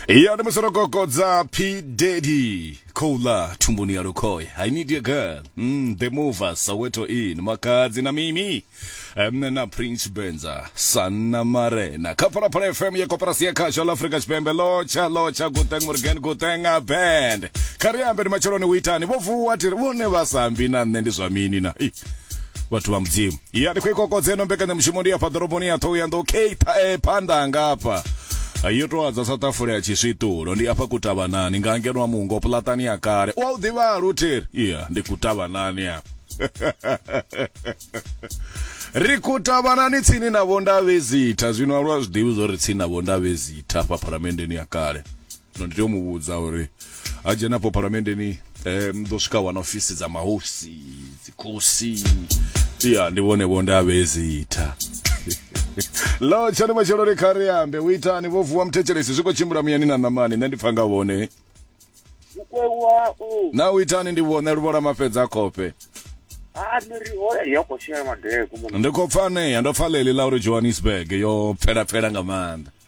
iya ndi musorogogodza p daddy khoula thumbuni ya lukhoya i need your girl mm, the mover soweto in makadzi na mimi mne na prince benza sanna marena kha phalaphala fm ya koperasi ya khasho la afrika tshipembe lotsha lotsha guteng morgan guteng a band kha ri ambe ndi matsheloni u itani vho vuwa tiri vhone vha sambi na nṋe ndi zwa mini na Ih, vhathu vha mudzimu ya ndi khou i kokodza ino mbekanyamushumo ndi afha ḓoroboni ya thohoyanḓou keitha e phanḓa hanga afha yo tou adza sa ṱafula ya tshiswiṱulo ndi afha kutavhanani nga ngeno a mungo puḽatani ya kale u a u ḓivha lutheri iya ndi kutavhanani afha ri kutavhanani tsini na vhondavhezitha zwino alwa zwiḓivhi zwo ri tsini na vhondavhezitha afha phalamenndeni ya kale zwino ndi tea u mu vhudza uri a dzhena afho phalamenndeni um ḓo swika wana ofisi dza mahosi dzikhosi ya ndi vhone vho nda vhezitha lo tshani matshelo ri kha ri ambe u itani vho vuwa muthetshelesi zwi khou tshimbila muyani na ṋamani nṋe ndi pfa nga vhone Mukwewa u na u itani ndi vhone luvhola mafhedza a khofhe ha ni ri hola ya khou shela madeko mona. ndi khou pfa anea ndo pfa ḽeḽi ḽa uri johannesburg yo pfelapfela nga maanḓa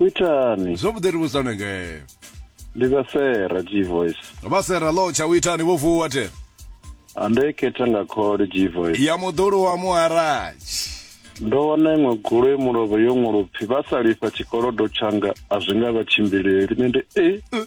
Itani. Zwavhuḓi ri vhudzane ngee. Ndi vha Sera G voice. Vha Sera lo tsha u itani vho vuwa the. Ande khetha nga khole G voice. Ya muḓulu wa muharatshi. Ndo wana iṅwe gulo e mulovho yo ṅwalopfi vha sa lifha tshikolodo tshanga a zwi nga vha tshimbileli nende e. Eh.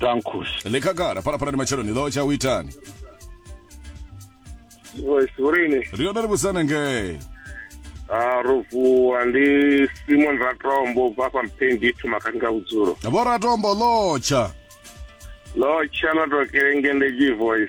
Dankus. ḽi khagala phalaphala ndi matshelo ni ḓo tsha u itani Wes Urini. ri yone ri vhusana ngei Ah, ro vuwa ndi Simon Ratombo bva fha Mpendi thoma kha nga vhudzulo. vhoratombo ḽotsha Lo tshana to kelenge ndi G voice.